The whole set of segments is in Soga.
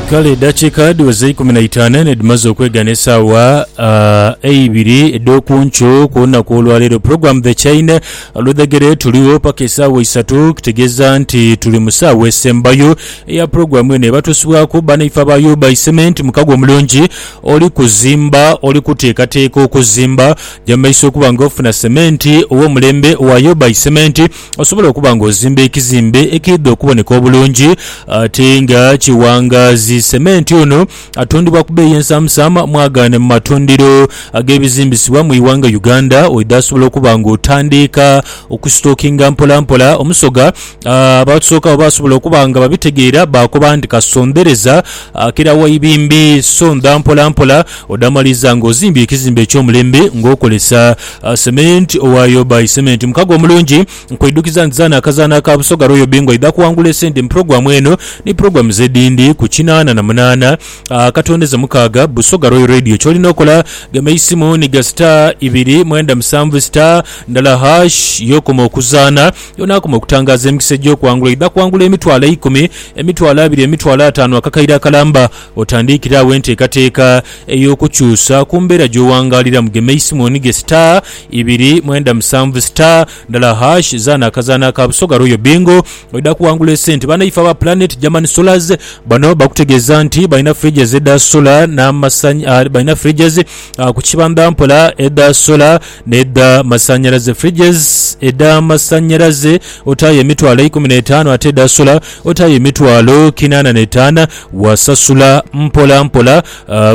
Kale edakiika dhiweze eikumi na itaanu nh'edhimaze okwegana esaawa eibiri edh'oku nkyo ku lunaku olwaleero. Pulogulaamu The Chaine olwedhegere tuligho paka esaawa isatu, kitegeeza nti tuli mu saawa esembayo eya pulogulaamu eno ebatuusibwaku banaife aba UBI Cement. Mukago omulungi oli kuzimba, oli kuteekateeka okuzimba, jamaiso okuba nga ofuna sementi ow'omulembe owa UBI Cement. Osobola okuba ng'ozimba ekizimbe ekiidha okuboneka obulungi ate nga kiwangaazi. Sementi ono atundibwa ku beeyi ensaamusaamu mwagaane mu matundiro ag'ebizimbisibwa mu ighanga Uganda. Oidha asobola okuba ng'otandiika okusitokinga mpolampola omusoga. Abatusookawo basobola okuba nga babitegeera baakoba nti kasondereza akira wa ibimbi, sondha mpolampola odaamaliza ng'ozimbye ekizimbe eky'omulembe ng'okozesa Cement owa yo by cement mukago omulungi nkweidhukiza nti zaana akazaana aka Busoga Royal Bingo aidha kuwangula esente mu pulogulamu eno ni pulogulamu zedindi ku kinaana na munaana akatondeze mukaaga Busoga Royal Radio kyolina okola gema eisimu ni ga star ibiri mwenda musanvu star ndala harsh yokoma okuzaana yonakoma okutangaaza emikisa egyokuwangula oidha kuwangula emitwalo eikumi emitwalo abiri emitwalo ataanu akakaire akalamba Otandiikire agho enteekateeka ey'okukyusa ku mbeera gy'owangaaliramu, gema eisimoni ghe star ibiri mwenda musanvu star ndala hash, zaana akazaanho aka Busoga Royal Bingo oidha kuwangula esente. Banaife aba Planet German Solars bano bakutegeeza nti balina fridges edha solar n'amasanhy balina fridges ku kibandha mpola edha solar, N'edha masannyalaze, fridges, edha masannyalaze otaaye emitwalo eikumi n'etaanu ate edha sola otaaye emitwalo kinaana n'etaana. Wasasula mpola mpola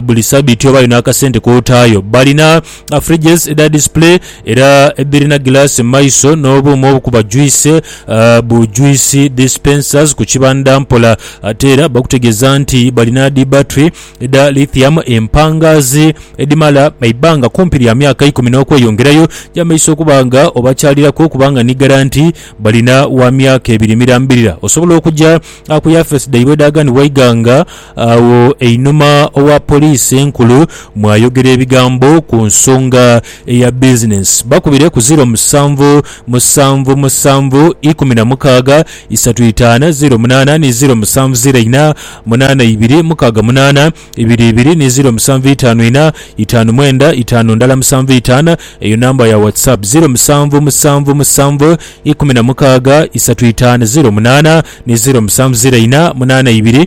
buli sabiiti obaayo n'akasente k'otaayo. Balina fridges edha display era edhirina gilaasi mu maiso n'obuuma obukuba juice bu juice dispensers ku kibandha mpola. Ate era bakutegeeza nti balina dhi battery edha lithium empangaazi edhimala eibanga kumpi lya myaka ikumi n'okweyongerayo gy'amaiso okuba nga obakyaliraku okuba nga ni garanti balina wa myaka ebiri mirambirira osobola okuja ku yafeesi dhaibwe edhaghanibwa eighanga agho einhuma owa poliisi enkulu mwayogera ebigambo ku nsonga eya bizinensi. Bakubire ku ziro musanvu musanvu musanvu ikumi na mukaaga isatu itaana zeero munaana ni zeero musanvu zeero ina, munaana ibiri mukaaga munaana, ibiri ibiri ni zeero musanvu itaanu ina, itaanu mwenda itaanu ndala musanvu itaana, eyo namba ya WhatsApp, zeero musanvu musanvu musanvu ikumi na mukaaga isatu itaana zeero munaana ni zeero musanvu zeero ina, munaana ibiri.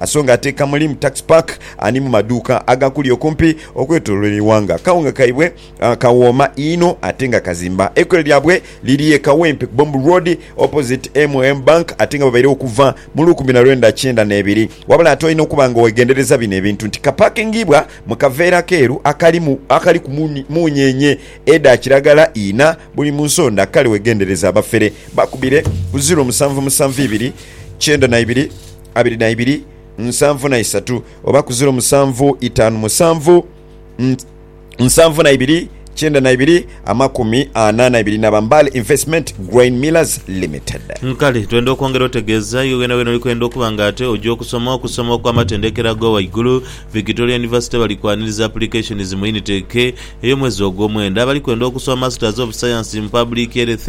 Asonga ate kamuli mu tax park ani mu maduuka agakuli okumpi okwetolola eighanga. Akawunga kaibwe kawooma inho ate nga kazimba. Eikolero lyabwe liri e Kawempe ku Bomb Road opposite MM Bank ate nga babairegho okuva mu lukumi na lwenda kyenda n'ebiri. Wabula ate olina okuba nga wegendereza bino ebintu nti kapakingiibwa mu kaveera keeru akalimu akaliku munyenye edha kiragala inha buli mu nsonda kale wegendereze abafere. Bakubire ku ziro musanvu musanvu ibiri kyenda na ibiri. abiri na ibiri, nsanvu na isatu, oba ku ziro musanvu itaanu musanvu, nsanvu na ibiri kyenda na ibiri amakumi ana na ibiri naba Mbale Investment Grain Millers Limited. Nkale twenda okwongera otegeeza iwe wenawena oli kwenda okuba nga ate oja okusoma okusoma okw'amatendekero aga waigulu, Victoria University bali kwaniriza applications mu Unit eke ey'omwezi ogw'omwenda. Abali kwenda okusoma Masters of Science mu Public Health,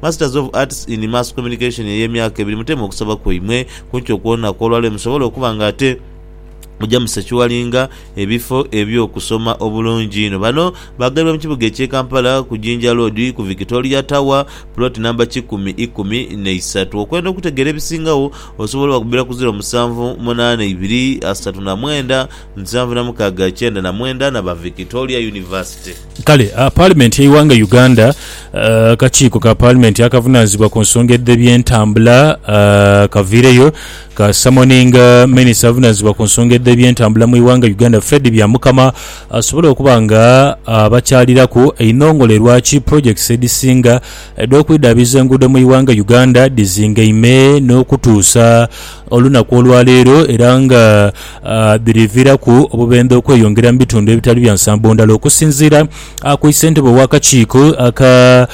Masters of Arts in Mass Communication ey'emyaka ebiri muteeme okusaba kwaimwe kunkyo kwona kw'olwaleero musobole okuba nga ate muja mu Secuwalinga ebifo eby'okusoma obulungi inho. Bano baagaibwa mu kibuga eky'e Kampala ku Jinja Road ku Victoria Tower, Plot Number kikumi ikumi n'eisatu. Okwenda okutegeera ebisingagho osobola obakubira ku ziro musanvu munaana ibiri asatu na mwenda nsanvu na mukaaga kyenda na mwenda na ba Victoria University. Kale Paalimenti y'eighanga Uganda, akakiiko ka Paalimenti akavunaanizibwa ku nsonga edh'ebyentambula kaviireyo kaasamoninga minisita avunaanizibwa ku nsonga edh'ebyentambula mu ighanga Uganda Fred Byamukama asobole okuba nga abakyaliraku einhongole lwaki pulojekiti edhisinga edh'okwidhaabiiza enguudo mu ighanga Uganda dhizingaime n'okutuusa olunaku olwaleero era nga biriviiraku obubendhe okweyongera mu bitundu ebitali bya nsambo ndhala okusinziira ku issentebe w'akakiiko aka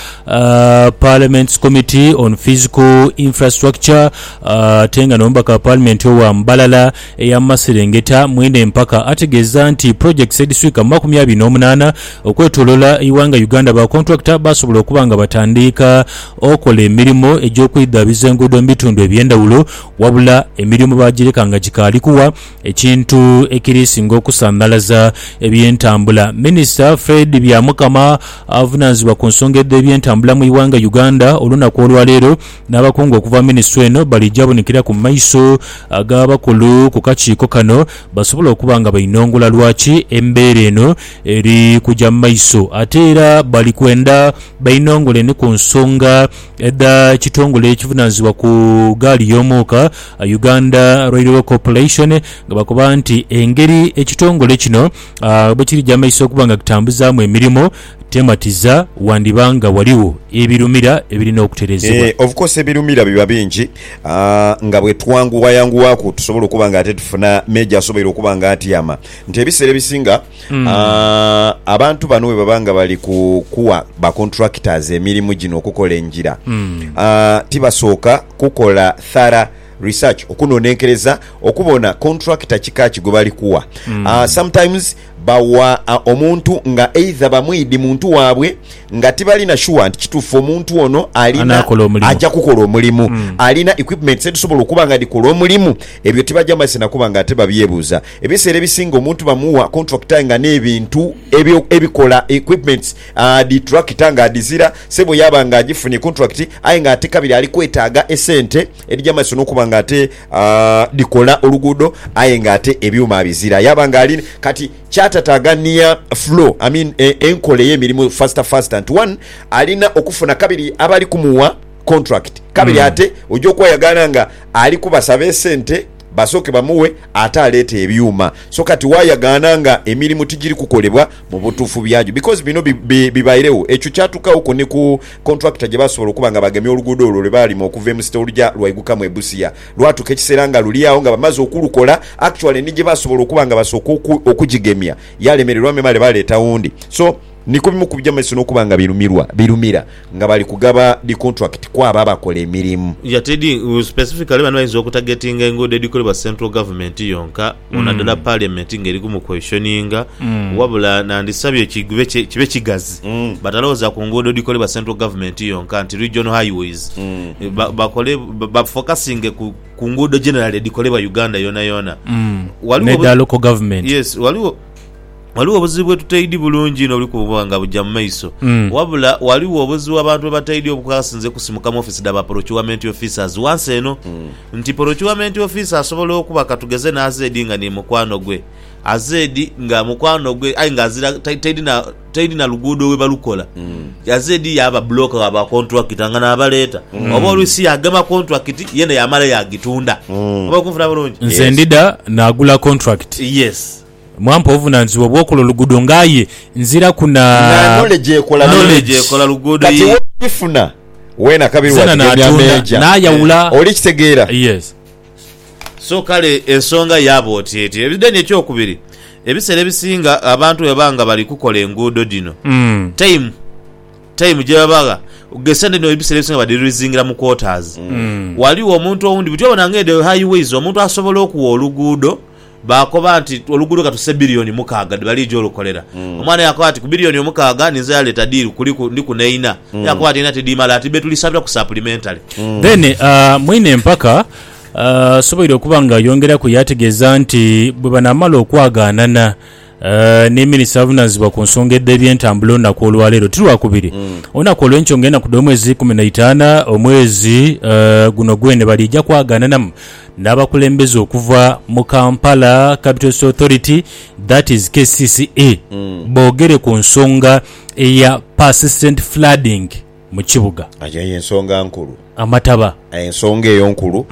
Parliament's Committee on Physical Infrastructure ate nga n'omubaka wa Paalimenti owa Mbalala ey'amaserengeta Mwine Mpaka ategeeza nti projects edhiswika mu makumi abiri n'omunaana okwetolola eighanga Uganda ba contractor baasobola okuba nga batandiika okola emirimu egy'okwidhaabiza enguudo mu bitundu eby'endhawulo Wabula emirimu baagireka nga gikaali kuwa, ekintu ekiri singa okusanhalaza ebyentambula. Minisita Fred Byamukama avunanizibwa ku nsonga edh'ebyentambula mu ighanga Uganda olunaku olwaleero n'abakungu okuva mu minisitule eno bali jabonikiraku mu maiso g'abakulu ku kakiiko kano basobole okuba nga bainongula lwaki embeera eno eri kuja mu maiso ate era bali kwenda bainongole ni ku nsonga Edha kitongole ekivunanizibwa ku gaali y'omuuka, Uganda Railway Corporation nga bakoba nti engeri ekitongole kino bwekiri ja maiso okuba nga kitambuzaamu emirimu tematiza wandiba nga waliwo ebirumira ebirina okuterezebwa. Of course ebirumira biba bingi nga bwetwanguwayanguwaku tusobola okuba nga ate tufuna major asoboire okuba nga atyama nti ebiseera ebisinga Mm. Ah, abantu bano bwe baba nga bali ku kuwa ba contractors emirimu gino okukola engira mm. ah, tibasooka kukola thara research okunonenkereza okubona contractor kika ki gwe bali kuwa mm. ah, sometimes bawa ah, omuntu nga either bamwidi muntu waabwe nga tibalina shuwa nti kituufu omuntu ono alina ajja kukola omulimu mm. alina equipments edhisobola okuba nga dhikola omulimu ebyo tibajja mazise nakuba nga ate babyebuuza Ebiseera ebisinga omuntu bamuwa contract aye nga n'ebintu ebyo ebikola, equipments, dhi tractor nga adhizira. Sebo yaaba nga agifunye contract aye nga ate kabiri ali kwetaaga esente edhija mu maiso n'okuba nga ate dhikola oluguudo aye nga ate ebyuma abizira yaaba nga ali kati kyatataaganhia flow I mean enkola ey'emirimu faster faster nti one alina okufuna kabiri abali kumuwa contract kabiri ate oja okwayagaala nga ali kubasaba esente basooke bamughe ate aleete ebyuma. So kati waayagaana nga emirimu tigiri kukolebwa mu butuufu byagyo because bino bibairegho. Ekyo kyatuukaaghoku ni ku kontulakita gye baasobola okuba nga bagemye oluguudo olwo lwe baalima okuva e Musita oluja lwaigukamu e Busia. Lwatuuka ekiseera nga luli agho nga bamaze okulukola, actually ni gye baasobola okuba nga basooka okugigemya yalemererwa memale baleeta wundi. So. Ni ku bimu ku bigya mu maiso n'okuba nga birumirwa birumira nga bali kugaba dhi kontulakiti ku abo abakola emirimu. Yatedi ngu specifically bano bayinza okutagetinga enguudo edhikolebwa central government yonka nadala parliament nga eri ku mu questioninga wabula nandisabye kigube kibe kigazi batalowoza ku nguudo edhikolebwa central government yonka nti regional highways bakole ba focusinge ku nguudo generally edhikolebwa Uganda yonayona. Waliwo. N'edha local government. Yes waliwo. Ghaligho obuzibu bwe tutaidhi bulungi inho obuli kubonwa nga buja mu maiso. Wabula ghaligho obuzibu abantu bwe bataidhi obukasinze kusimuka mu ofisi dha ba Porocuwamenti Ofisaazi ghansi eno nti Porocuwamenti Ofisa asobola okuba ka tugeze n'azeedi nga ni mukwano gwe, azeedi nga mukwano gwe aye nga azira taidhi na luguudo we balukola, azeedi yaaba bbulooka wa ba kontulakita nga naabaleeta oba oluusi yaagema kontulakiti yena yaamala yaagitunda. Oba oli kunfuna bulungi? Nze ndidha naagula kontulakiti. Yes. Mwampa obuvunanizibwa obwokola oluguudo nga aye nziraku na knowledge kati webifuna wena kabiri wajigemya meeja oli kitegeera. So kale ensonga yaaba oti eti. Then ekyokubiri ebisera ebisinga abantu bwebaba nga bali kukola enguudo dhino time time gyebabagha esente dhino ebisera ebisinga badirizingira mu quarters. Waliwo omuntu owundi buti obona nga edho high ways omuntu asobola okuwa oluguudo Baakoba nti, Oluguudo katuse billioni mukaaga dhe baliija olukolera. Omwana yaakoba ati, Ku billioni omukaaga ninze yaleeta diiru kuliku, ndiku ne inha. Yaakoba ati, Einha tidhimala ati betulisabira ku supplementary. Then mwine empaka asoboire okuba nga ayongeraku yaategeeza nti bwe banaamala okwagaanana, Ni minisita avunaanizibwa ku nsonga edh'ebyentambula olunaku olwaleero ti Lwakubiri, olunaku olwenkyo nga enaku dh'omwezi ikumi na itaana omwezi guno gwene baliija kwagaananamu n'abakulembeze okuva mu Kampala Capital City Authority that is kcca boogere ku nsonga eya persistent flooding. mu kibuga. Aye eyo ensonga nkulu. Amataba. Ensonga eyo nkulu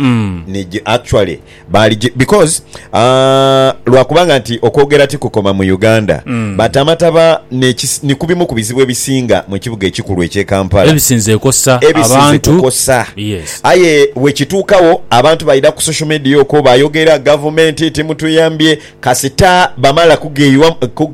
ni gi actually baali gi because aah lwakubanga nti okwogera tikukoma mu Uganda but amataba ne ki ni ku bimu ku bizibu ebisinga mu kibuga ekikulu ekye Kampala Ebisinze kosa ebisinze abantu. kukosa Yes. aye wekituukawo abantu baidha ku social media okwo bayogera gavumenti timutuyambye Kasita bamala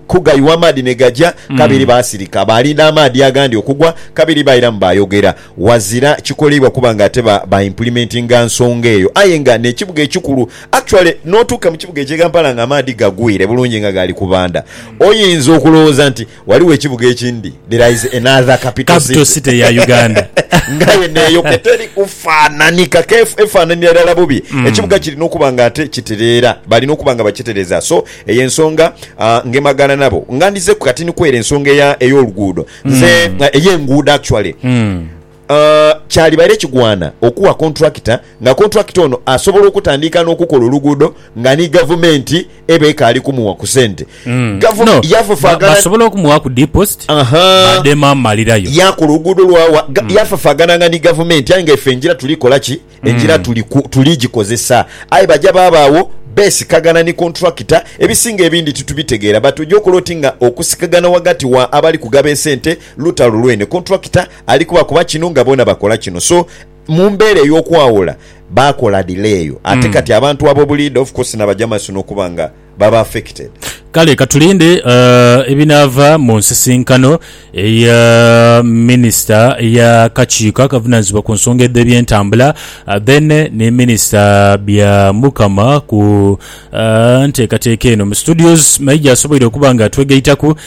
kugayuwa amaadhi ni gaja, kabiri baasirika. Baalinda amaadhi agandi okugwa, kabiri bairamu baayogera. Wazira kikoleibwa kuba nga ate ba implimentinga nsonga eyo. Aye nga n'ekibuga ekikulu, actually n'otuuka mu kibuga ekye Kampala nga amaadhi gagwire bulungi nga gaali kubanda, oyinza okulowooza nti Waliwo ekibuga ekindi, there is another capital city. Capital city ya Uganda. Ngaye neyo keteri kufanhanika ke efanhanira irala bubi. Ekibuga kirina okuba nga ate kitereera, balina okuba nga bakitereza. So eyo ensonga ngemagana nabo. Nga ndizeku kati ni kwere ensonga eya ey'oluguudo. Nze, ey'enguudo actually. Kyalibaire kigwana okuwa kontulakita nga kontulakita ono asobola okutandiika n'okukola oluguudo nga ni Gavumenti eba ekaali kumuwa ku sente. Gavumenti yafafaagana. Basobola okumuwaaku deposit baadhemu amalirayo. Yaakola oluguudo lwawa. Yafafaagananga ni Gavumenti aye nga ife engira tuli kola ki? Engira tuli gikozesa. Aye baja baabagho beesikagana ni kontulakita. Ebisinga ebindi titubitegeera but oja okola oti nga okusikagana ghagati wa abali kugaba esente lutalo lwene kontulakita Ali kubakoba kino nga boona bakola kino so mu mbeera ey'okwawula baakola dhila eyo ate kati abantu ab'obuliida of course na bajamasi n'okuba nga baba affected. Kale katulinde ebinaava mu nsisinkano eya minisita ey'akakiiko akavunaanyizibwa ku nsonga edh'ebyentambula then ni minisita Byamukama ku nteekateeka eno. Mu studios Maija asoboire okuba nga atwegaitaku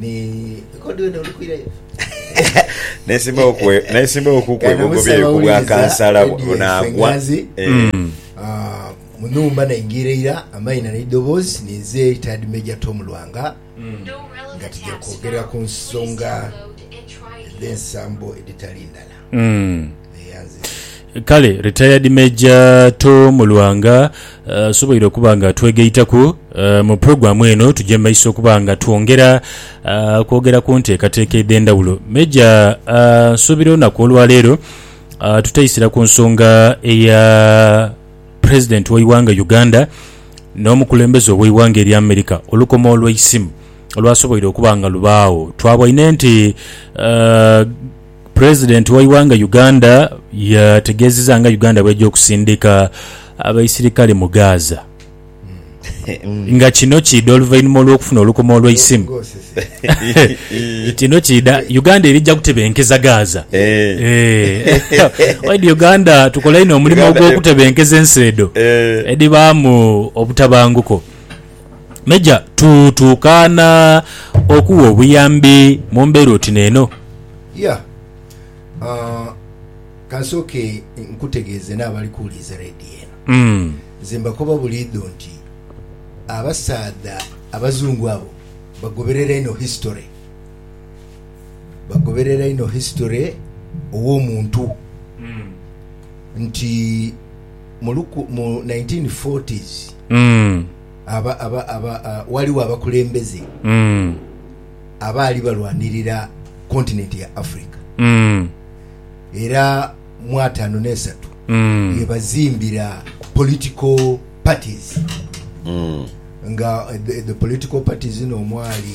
Ni record wena oli kwirayo. Nesimbawo kukwegogobyera yo kubwa kansala bunagwa munumba naingira eira amaina neidoboozi ninze retired major Tom Lwanga nga tija kwogerera kunsonga edhensambo edhitali ndala. Kale Retired Major Tom Lwanga asoboire okuba nga atwegaitaku mu pulogulaamu eno tugye mu maiso okuba nga twongera kwogera ku nteekateeka edh'endhawulo. Major, nsuubira olunaku olwaleero tutaisira ku nsonga eya Pulezidenti w'eighanga Uganda n'omukulembeze ow'eighanga erya America, olukomo olweisimu olwasoboire okuba nga lubaagho. Twabwine nti President waighanga Uganda yategeziza nga Uganda bweja okusindika abaisirikale mu Gaza nga kino kiidha oluvainhuma olwokufuna olukuma olweisimu kino kiidha Uganda erija kutebenkeza Gaza eeh Uganda tukola inho omulimo ogwokutebenkeza ensi edho edhibaamu obutabanguko. Meja tu, tukaana okugha obuyambi mu mbeera oti n'eno? Ya. Ah, ka nsooke nkutegeeze n'abali kuwuliriza leediyo eno. Mm. Nze mbakoba buliidho nti abasaadha Abazungu abo bagoberera inho history. Bagoberera inho history ow'omuntu. Nti. mu luku, mu 1940s Mm. aba, aba, aba, a, waliwo abakulembeze Mm. abaali balwanirira kontinenti ya Africa Mm. era mu ataano n'esatu Mm. yebazimbira political parties nga eh, the, the political parties zino omwali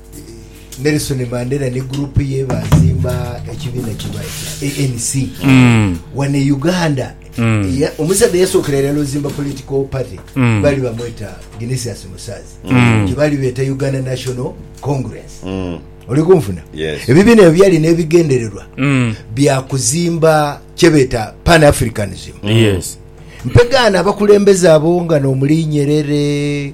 Nelson Mandela ni gurupu ye baazimba ekibiina kiba ekya ANC mm. wano e Uganda mm. ya, omusaadha yasookera irala ozimba political party mm. baali bamweta Genesius Musaazi mm. kyebaali beeta Uganda National Congress mm. oli kunfuna yes. ebibiina ebyo byalina ebigendererwa mm. bya kuzimba kyebeeta pan africanism mm. yes. mpegaana abakulembeze abo nga n'omuli Nyerere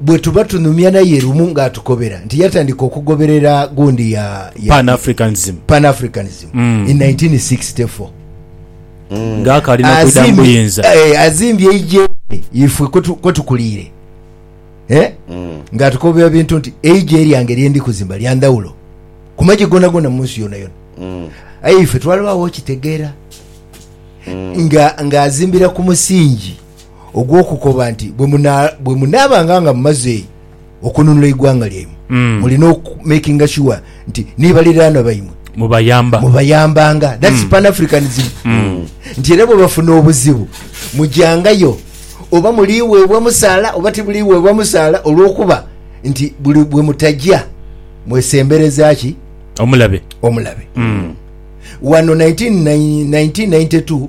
bwe tuba tunhumya naye lumu nga atukobera nti yatandika okugoberera gundi ya, ya Pan Africanism Pan Africanism mm. in 1964 mm. nga akali nakwida mubuyinza eh, azimbye eije ifwe kwetukuliire eh? mm. nga atukobera bintu nti eije lyange lyendi kuzimba lya ndhawulo ku magye gonagona mu nsi yonayona mm. aye ife twalibawo okitegeera mm. nga ng'azimbira ku musingi ogw'okukoba nti bwe munaabanga nga mumaze okununula eighanga lyaimwe, mm. mulina okumakinga shuwa nti ni baliraanwa baimwe mubayamba mubayambanga that's mm. pan africanism mm. nti era bwebafuna obuzibu mujangayo oba muliweebwa musaala oba tibuliweebwa musaala olwokuba nti buli bwe mutajja mwesembereza ki omulabe omulabe mm. wano 1992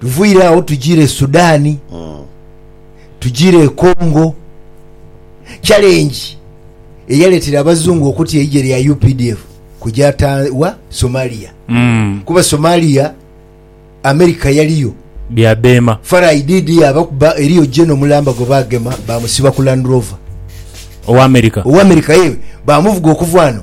Tuviire agho tujiire e Sudan, tujiire e Congo. Challenge eyaleetera Abazungu okutya eigye lya updf kuja Ta, wa? Somalia. Kuba Somalia America yaliyo. Bya beema. Farai DD abakuba, eriyo General mulamba gwe baagema baamusiba ku Land Rover. Owa America? Owa America, yee. Baamuvuga okuva ghano.